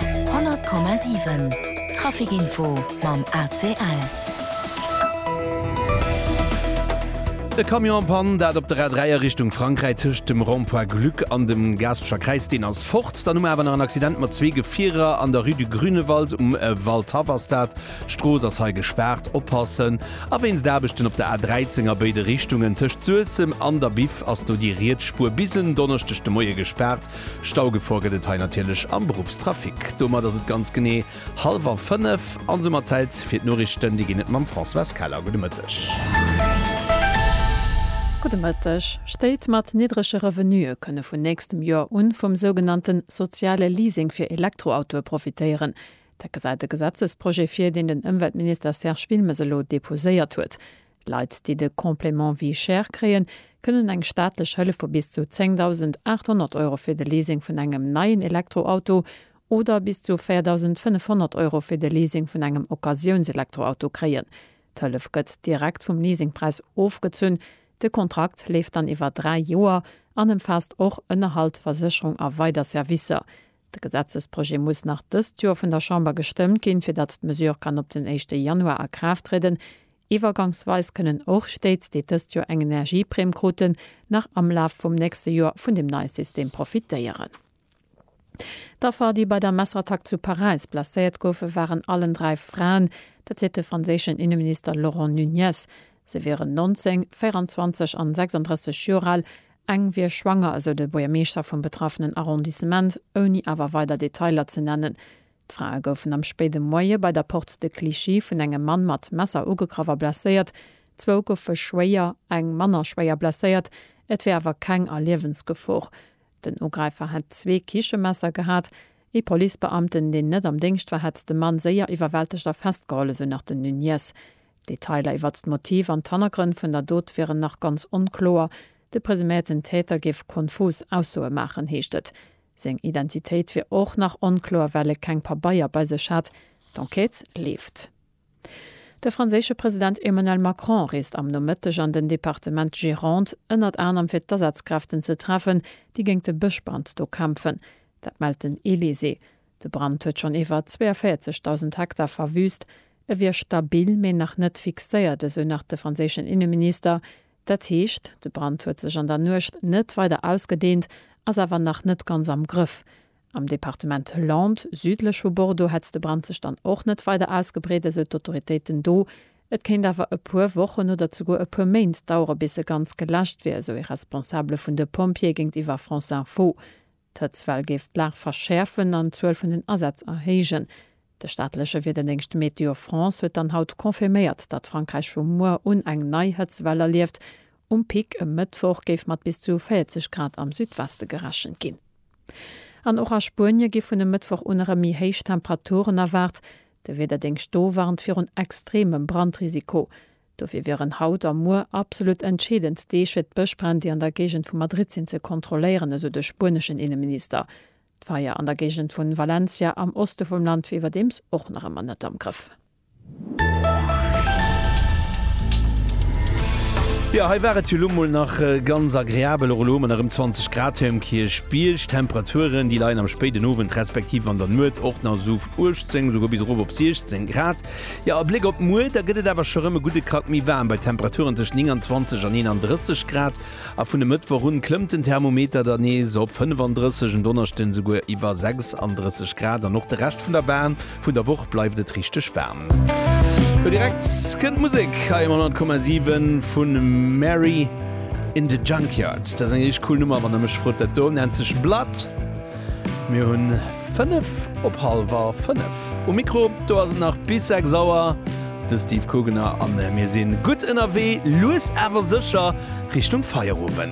100,7 Trafic Info mam ACL. E Camion am Pann, dat op der A 3 a Richtung Frankräi tëscht dem Rond-point Glück an dem Gaspecher Kräiz. Deen ass fort. Dann hu mer awer nach en Accident mat zwee Gefierer an der Rue du Grünewald um Waldhaff-Astat. D'Strooss ass hei gespaart. Oppassen! A wéinst Aarbechten op der A 13 a béide Richtungen tëscht Suessem an der Biff ass do déi riets Spuer bis en Donneschdeg de Moie gespaart. Staugefor gëtt et hei natierlech am Beruffstrafic. Domat ass et ganz genee hallwer 5 an soumat Zäit fir d'Noriichten. Déi ginn et mam Françoise Keller. Gudde Mëtteg. Gudde Mëtteg. Stéit mat niddrege Revenuë kënne vun nächstem Joer un vum sougenannte soziale Leasing fir Elektroautoe profitéieren. Dat gesäit de Gesetzesprojet vir, deen den Ëmweltminister Serge Wilmes elo deposéiert huet. Leit, déi de Complément vie chère kréien, kënnen eng staatlech Hëllef vu bis zu 10.800 Euro fir de Leasing vun engem neien Elektroauto oder bis zu 4.500 Euro fir de Leasing vun engem Occasiounselektroauto kréien. D'Hëllef gëtt direkt vum Leasingpräis ofgezunn. De Kontrakt leeft dann iwwer dräi Joer an ëmfaasst och Ënnerhalt, Versécherung a weider Servicer. De Gesetzesprojet muss nach dëst Joer vun der Chamber gestëmmt ginn, fir datt d'Mesure kann op den éischte Januar a Kraaft trieden. Iwwergangsweis kënnen och Stéit, déi dëst Joer eng Energieprime kruten, nach am Laf vum nächste Joer vun dem neie System profitéieren. D'Affer, déi bei der Messerattack zu Paräis blesséiert goufen, waren allen dräi Fraen. Dat seet de franséischen Inneminister Laurent Nunez. Se wieren 19, 24 an 36 Joer al Eng wier schwanger, esou de Buergermeeschter vum betraffenen Arrondissement, ouni awer weider Detailer ze nennen. D'Frae goufen am spéide Moie bei der Porte de Clichy vun engem Mann mat Messer ugegraff a blesséiert. Zwou goufe schwéier, eng manner schwéier blesséiert. Et wär awer keng a Liewensgefor. Den Ugräifer hätt zwee Kichemesser gehat. Ee Policebeamten, deen net am Déngscht war, hätt de Mann séier iwwerwältegt a festgeholl, esou nach den Nunez. D'Detailer iwwert d'Motiv an d'Hannergrënn vun der Dot wieren nach ganz onkloer. De presuméierten Täter géif konfus Aussoe maachen, heescht et. Seng Identitéit wier och nach onkloer, well e keng Pabeier bei sech hätt. D'Enquête leeft. De franséische President Emmanuel Macron reest am Nomëtteg an den Departement Gironde, ënnert anerem fir d'Asazkräften ze treffen, déi géint de Bëschbrand do kämpfen. Dat mellt den Elysée. De Brand huet schonn iwwer 42.000 Hektar verwüüst. E wier stabil, mee nach net fixéiert, esou nach de franséischen Inneminister. Dat heescht, de Brand huet sech an der Nuecht net weider ausgedeent, ass awer nach net ganz am Grëff. Am Departement Landes, südlech vu Bordeaux, hätt de Brand sech dann och net weider ausgebreet, esou d'Autoritéiten do. Et kéint awer e puer Wochen oder zeguer e puer Méint dauere bis e ganz geläscht wier, esou ee Responsabele vun de Pompjeeë géintiwwer France Info. D'Hëtzwell géif d'Lag verschäerfen an d'Zuel vun den Asätz erhéijen. De staatleche Wiederdéngscht Météo France huet dann haut confirméiert, datt Frankräich vu muer un eng nei Hëtztwell erlieft. Um Pic e Mëttwoch géif mat bis zu 40 Grad am Südweste gerechent ginn. An och a Spuenie gi vun e Mëttwoch un erëm méi héich Temperaturen erwaart. De Wiederdéngscht do warnt virun extremem Brandrisiko. Dofir wieren haut a muer absolut entscheedend Deeg, fir d'Bëschbränn, déi an der Géigend vu Madrid sinn, ze kontrolléieren, esou de spueneschen Inneminister. D'Feier an der Géigend vun Valencia am Oste vum Land wier iwwerdeems och nach ëmmer net am Grëff. Jo, hei war et jo lo mol nach ganz agreabel. Och elo hu mer nach ëm 20 Grad hei um Kierchbierg. Temperaturen, déi leien am spéiden Owend respektiv an der Nuet och nach esou op 18, esouguer bis erof op 16 Grad. Jo, e Bléck op muer, da gëtt et awer scho rëm e gudde Krack méi waarm, bei Temperaturen tëschent 29 an 31 Grad. A vun e Mëttwoch un klëmmt den Thermometer dann nees op 35, en Donneschden esouguer iwwer 36 Grad. An och de Rescht vun der Bahn vun der Woch bleift et richteg waarm. Lo direkt kënnt d'Musek hei um 100,7 vun Mary in the Junkyard. Dat ass eng richteg cool Nummer, wann der mech frot. Dat do nennt sech Blood. Mir hunn 5 op halwer 5. Um Mikro, do ass et nach bis 6 Auer, de Steve Kugener an mir sinn gutt ënnerwee, lues awer sécher Richtung Feierowend.